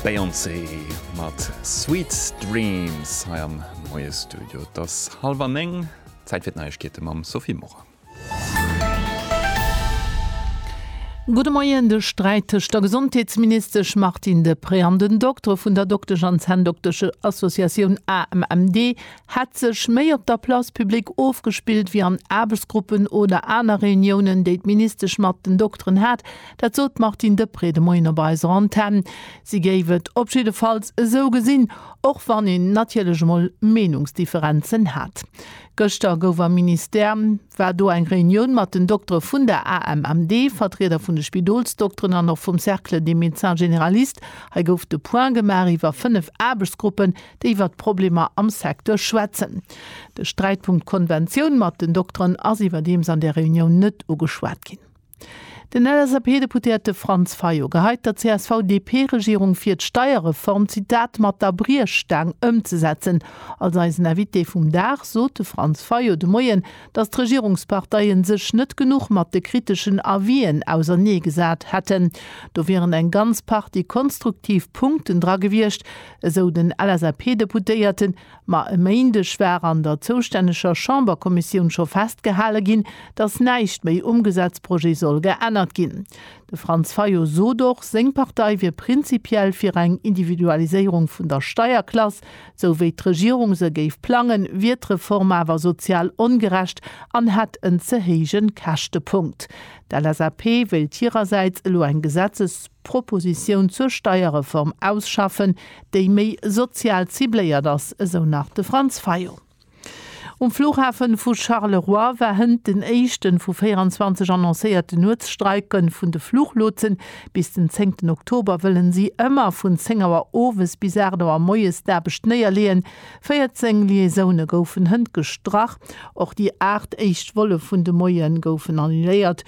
Beyoncé mat Sweet Dreams hei am Moiestudio. Et ass hallef an néng, Zäit fir d'Neiegkeete mam Sophie Morang. Gudde Moien, De Sträit tëscht der Gesondheetsministesch Martine Deprez an den Doktere vun der Doktesch an Zänndokteschen Associatioun AMMD hätt sech méi op der Place publique ofgespillt wéi an Aarbechtsgruppen oder aner Reuniounen, déi d'Ministesch mat den Dokteren hat. Dat sot d'Martine Deprez de Moien op eiser Antenn. Si géif et op jiddefalls esou gesinn, och wann een natierlech emol Meenungsdifferenzen hätt. Gëschter gouf am Ministère, war do eng Reunioun mat den Doktere vun der AMMD, Vertrieder vun de Spidolsdokteren an och vum Cercle des médecins généralistes. Hei gouf de Point gemaach iwwer fënnef Aarbechtsgruppen, déi iwwer d'Problemer am Secteur schwätzen. De Sträitpunkt Konventioun mat den Dokteren ass iwwerdeems an där Reunioun net ugeschwat ginn. Den LSAP-Deputéierte Franz Fayot geheit der CSV-DP-Regierung vir, d'Steierreform, Zitat, mat der Briechstaang ëmzesetzen. Als eisen Invité vum Dag sot de Franz Fayot de Moien, datt d'Regierungsparteien sech net genuch mat de kriteschen Avis'en ausernee gesat hätten. Do wieren eng ganz Partie konstruktiv Punkten dra gewiescht, esou den LSAP-Deputéierten. Ma e Méindeg war an der zoustänneger Chamberkommissioun scho festgehale ginn, datt näischt méi um Gesetzprojet soll geännert ginn. De Franz Fayot sot och, seng Partei wier prinzipiell fir eng Individualiséierung vun der Steierklass. Sou wéi d'Regierung se géif plangen, wier d'Reform awer sozial ongerecht an hätt en ze héije Käschtepunkt. D'LSAP wéilt hirersäits elo eng Gesetzespropositioun zur Steierreform ausschaffen, déi méi sozial cibléiert ass, esou nach de Franz Fayot. Um Flughafe vu Charleroi war hënt den éischte vu 24 annoncéierte Nuetsstreike vun de Fluchlotsen. Bis den zéngten Oktober wëlle si ëmmer vun 10 Auer owes bis 8 Auer moies d'Aarbecht néierleeën. 14 Liaisoune goufen hënt gestrach. Och déi 8 éischt Volle vun de Moie goufen annuléiert.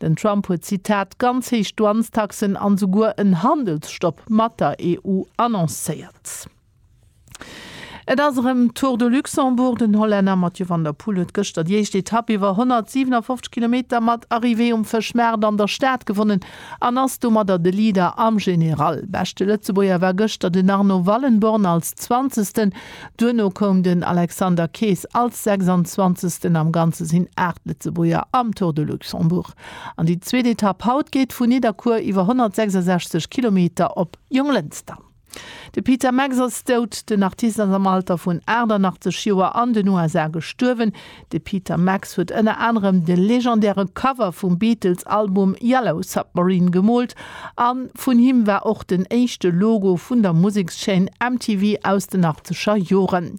Den Trump huet, Zitat, ganz héich Douanestaxen an esouguer en Handelsstopp mat der EU annoncéiert. Et ass erëm Tour de Luxembourg. Den Hollänner Mathieu van der Poel huet gëschter déi éischt Etapp iwwer 157 Kilometer mat Arrivée um Fëschmaart an der Stad gewonnen an ass domadder de Leader am General. Beschte Lëtzebuerger war gëschter den Arno Wallenborn als Zwanzegsten. Duerno koum den Alexander Kees als 26. Am Ganze sinn 8 Lëtzebuerger am Tour de Luxembourg an déi zweet Etapp haut geet vu Nidderkuer iwwer 166 Kilometer op Jonglënster. De Peter Max ass dout. Den Artist ass am Alter vun 88 Joer an den USA gestuerwen. De Peter Max huet ënner anerem de legendäre Cover vum Beatles-Album Yellow Submarine gemoolt a vun him war och den éischte Logo vun der Musekschaîne MTV aus den achtzeger Joren.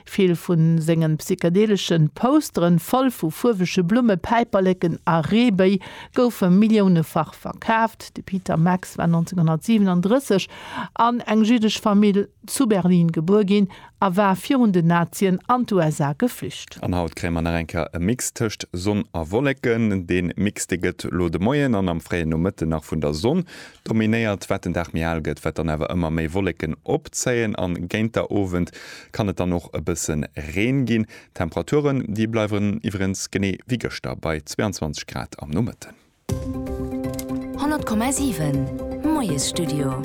Vill vu senge psychedelesche Postere voll vu fuerwege Blumme, Päiperleken a Reebëi goufe milliounefach verkaaft. De Peter Max war 1937 an eng jiddesch Famill zu Berlin gebuer ginn a war virun den Nazien an d'USA geflücht. An haut kréie mer nach eng Kéier e Mix tëscht Sonn a Wolleken. De Mix dee gëtt elo de Moien an am fréie Nomëtten nach vun der Sonn dominéiert. Wat den Dag méi al gëtt, wat dann awer ëmmer méi Wolleken opzéien an géint der Owend kann et dann och e bësse Reen ginn. Temperaturen déi bleiwen iwwerengs genee wéi gëschter bei 22 Grad am Nomëtten. 100,7 Moiesstudio.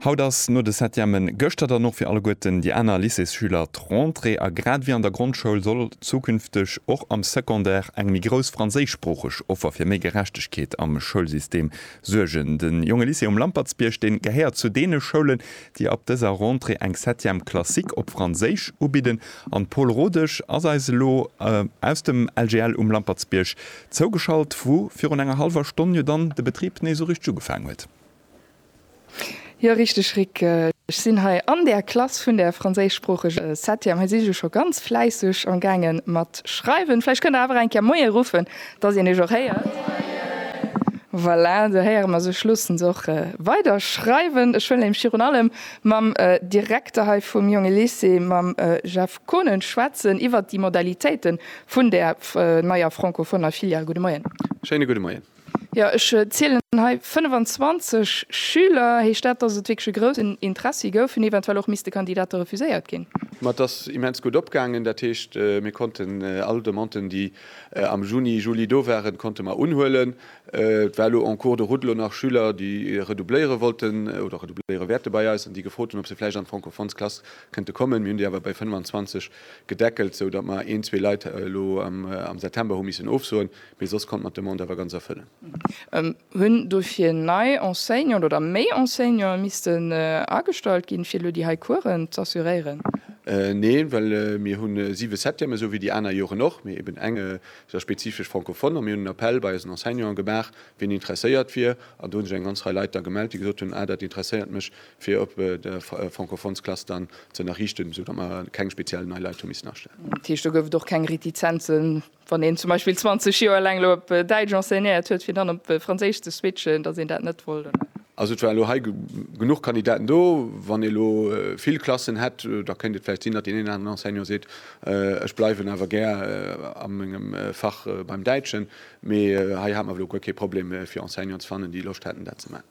Haut ass no de Septièmen gëschter dann och fir alleguerten déi aner Lycéesschüler d'Rentrée a grad ewéi an der Grondschoul soll zukünfteg och am Secondaire eng méi grouss franséischsproocheg Offer fir méi Gerechtegkeet am Schoulsystem suergen. De Jonge Lycée um Lampertsbierg, dee gehéiert zu deene Schoulen, déi ab dëser Rentrée eng Septième Classique op Franséisch ubidden an d'Paule Rodesch ass eis elo aus dem LGL um Lampertsbierg zougeschalt, wou virun enger hallwer Stonn jo dann de Betrib nees esou richteg ugefaangen huet. Jo richteg Rick, ech sinn hei an der Klass vun der franséischsproocheger Septième, hei si se scho ganz fläisseg am gaange mat schreiwen. Vläicht kënnt Der awer eng Kéier Moie ruffen Dass een eech och héiert. Voilà, do héiere mer se. Ech loossen se och weider schreiwen. Ech wëllen nämlech virun allem mam Direkter hei vum Jonge Lycée, mam Jeff Konen, schwätzen iwwert déi Modalitéite vun där neier francofoner Filial. Gudde Moien. Schéine gudde Moien. Jo, ech zielen hei 25 Schüler. Heescht dat, dass et wierklech e groussen Interessi gouf, hunn eventuell och misste Kandidate refuséiert ginn? Ma et ass immens gutt opgaangen. Dat heescht, mir konnten all Demanden, déi Am Juni, Juli, do waren, konnte mer unhuelen. Et war elo en cours de route elo nach Schüler, déi redoubléiere wollten oder redoubléiere wäerte bei eis an déi gefrot hunn, ob se vläicht an d'Francophones-Klass kënnte kommen. Mir hunn déi awer bei 25 gedeckelt, sou datt mer een, zwee Leit elo am September hu missen ofsoen, mee soss konnte mer d'Demande awer ganz erfëllen. Hunn dofir nei Enseignanten oder méi Enseignanten missten agestallt ginn, fir elo déi hei Coursen z'assuréieren? Neen, well mir hu siwe Septièmen, esou wéi déi aner Joren och, mee eben eng sou spezifesch Francophone. A mir hunn en Appell bei eisen Enseignanten gemaach, wien interesséiert wier. An do hu sech eng ganz Rei Leit da gemellt, déi gesot hunn, Ah, dat interesséiert mech, fir op der Francophonesklass dann z'ënnerriichten, esou datt mer keng speziell nei Leit hu missen astellen. Dat heescht, do gouf et och keng Retizenzen Wann een zum Beispill 20 Joer laang elo op Däitsch enseignéiert huet, fir dann op Franséisch ze switchen, datt een dat net wollt, oder? Also et waren elo hei genuch Kandidaten do. Wann ee elo vill Klassen hätt, da kéint et vläicht sinn, datt deen een oder aneren Enseignant seet, ech bleiwen awer gär a mengem Fach beim Däitschen. Mee hei hate mer elo guer kee Problem, fir Enseignanten ze fannen, déi Loscht hätten, dat ze maachen.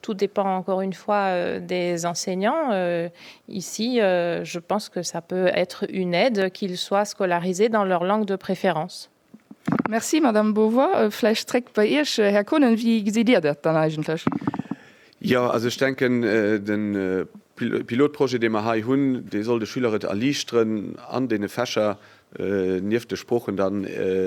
Tout dépend encore une fois des enseignants. Ici, je pense que ça peut être une aide qu'ils soient scolarisés dans leur langue de préférence. Merci, Madame Beauvoir. Vläicht zréck bei Iech, Här Kohnen, wéi gesitt Dir dat dann eigentlech? Jo, also ech denken, de Pilotprojet, dee mer hei hunn, dee soll de Schüler et erliichteren, an deene Fächer nieft de Sproochen dann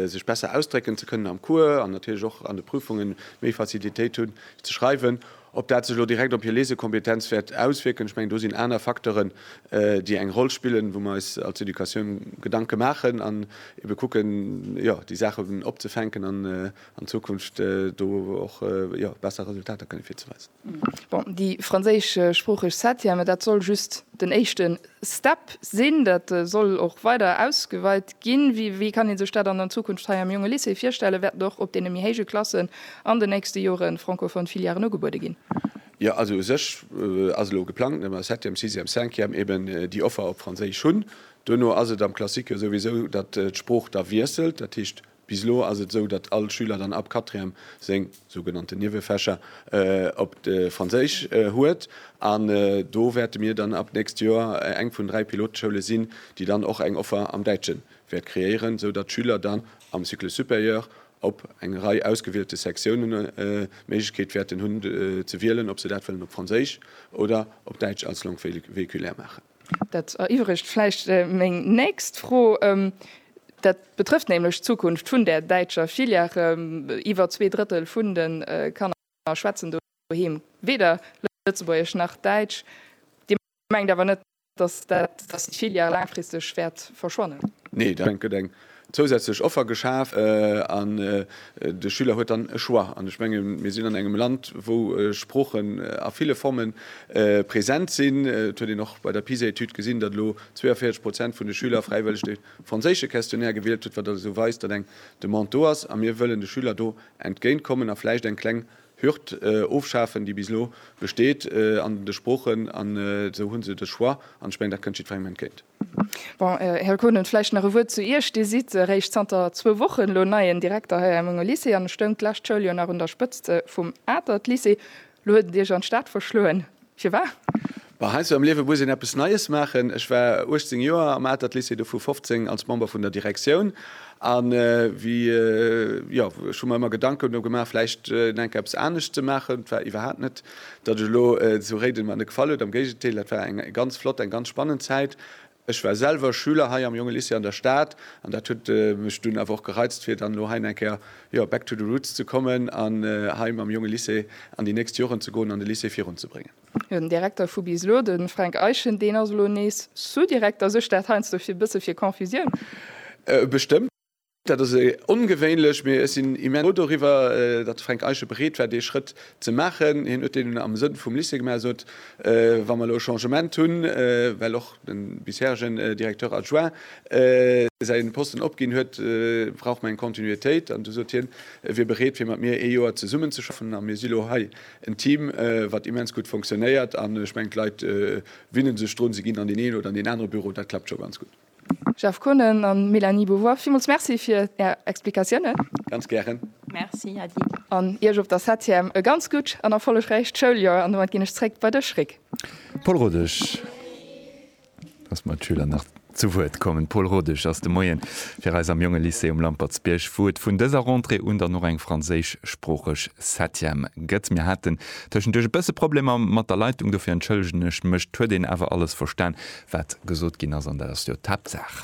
sech besser ausdrécken ze kënnen am Cours an natierlech och an de Prüfungen méi Facilitéit hunn ze schreiwen. Ob dat sech elo direkt op hir Lesekompetenz wäert auswierken, ech mengen do sinn aner Facteuren déi eng Roll spillen, wou mer eis als Educatioun Gedanke maachen an ebe kucken jo déi Saachen opzefänken an an Zukunft do och besser Resultater kënne virzeweisen. Bon, déi franséischsproocheg Septième, dat soll just den éischte Step sinn, dat soll och weider ausgeweit ginn. Wéi kann ee sech dat an Zukunft hei am Jonge Lycée virstellen? Wäerten och op deene méi héije Klassen an den nächste Jore francophone Filièren ugebuede ginn? Jo, also u sech ass elo geplangt, datt mer Septième, Sixième, Cinquième eben déi Offer op Franséisch hunn. Duerno ass et am Classique jo souwisou, datt d'Sprooch da wiesselt, dat heescht Bis elo ass et esou, datt all Schüler dann ab Quatrième seng sougenannten Niewefächer op Franséisch huet. An do wäerte mir dann ab d'nächst Joer eng vun dräi Piloteschoule sinn, déi dann och eng Offer am Däitsche wäert kreéieren, esou datt d'Schüler dann am Cycle supérieur op eng Rei ausgewielte Sektiounen d'Méiglechkeet wäerten hunn ze wielen, ob se dat wëllen op Franséisch oder op Däitsch als Langue véhiculaire maachen. Dat eriwweregt vläicht meng nächst Fro. Dat betrëfft nämlech d'Zukunft vun där däitscher Filière. Iwwer zwee Drëttel vun de Kanner schwätzen doheem weder Lëtzebuergesch nach Däitsch. Dir mengt awer net, dass déi Filière laangfristeg wäert verschwannen? Nee, dat mengen ech net. zousätzlech Offer geschaf an de Schüler huet dann e Choix. An ech menge mir sinn an engem Land, wou Sproochen a ville Forme present sinn. Et huet een och bei der PISA-Etüd gesinn, datt elo 42 Prozent vun de Schüler fräiwëlleg de franséische Questionnaire gewielt huet, wat also weist, datt eng Demande do ass. A mir wëllen de Schüler do entgéint kommen a vläicht eng kleng Hürd ofschafen, déi bis elo besteet an de Sproochen. An esou hu se de Choix an ech menge dat kënnt jiddwerengem entgéint. Bon, Här Konen, vläicht nach e Wuert zu Iech. Dir sidd eréischt zanter zwou Wochen elo neien Direkter hei am Unger Lycée an stoungt d'lescht Schouljoer nach un der Spëtzt vum Atert Lycée. Elo huet et Iech an d'Stad verschloen. Firwat? Bon, heiansdo am Liewe muss een eppes Neies maachen. Ech war 18 Joer am Atert Lycée, dovu 15 als Member vun der Direktioun. An wéi, jo, ech hu mer ëmmer Gedanken do gemaach, vläicht enk eppes anescht ze maachen. Et war iwwerhaapt net. Datt ech elo zu Réiden mer net gefall huet, am Géigendeel, dat war eng ganz flott, eng ganz spannend Zäit. Ech war selwer Schüler hei am Jonge Lycée an der Stad an dat huet mech dunn awer och gereizt fir dann elo hei eng Kéier, jo, back to the roots ze kommen an hei mam Jonge Lycée an déi nächst Joren ze goen an de Lycée virun ze bréngen. Jo, den Direkter vu bis elo, de Fränk Eischen, deen ass elo nees Sous-Direkter. Suergt dat heiansdo fir e bësse fir Confusioun? Bestëmmt. Dat ass ongewéinlech, mee ech sinn immens frou doriwwer, datt de Fränk Eische bereet war, dee Schrëtt ze maachen. Hien huet deen am Sënn vum Lycée gemaach, sot, wa mer elo e Changement hunn, well och de bisheregen Directeur adjoint säi Posten opginn huet, brauch mer eng Continuitéit. An du sot hien, e wier bereet, fir mat mir ee Joer zesummenzeschaffen. A mir si lo hei en Team, wat immens gutt fonctionnéiert. An ech mengen, d'Leit winne sech drun, se ginn an deen een oder an deen anere Büro, dat klappt scho ganz gutt. Jeff Konen an Mélanie Beauvoir, villmools Merci fir Är Explikatiounen. Ganz gären. Merci Hedy. An Iech op der Septième e ganz gutt an erfollegräicht Schouljoer an domat ginn ech zréck bei dech Rik. Paul Rodesch, lass mer d'Schüler nach zu Wuert kommen. Paul Rodesch ass de Moien fir eis am Jonge Lycée um Lampertsbierg, wou et vun dëser Rentrée un dann och eng franséischsproocheg Septième gëtt. Mir haten Tëschenduerch e bësse Problemer mat der Leitung, dofir entschëllegen ech mech. 't huet een awer alles verstan, wat gesot ginn ass, an dat ass jo d'Haaptsaach.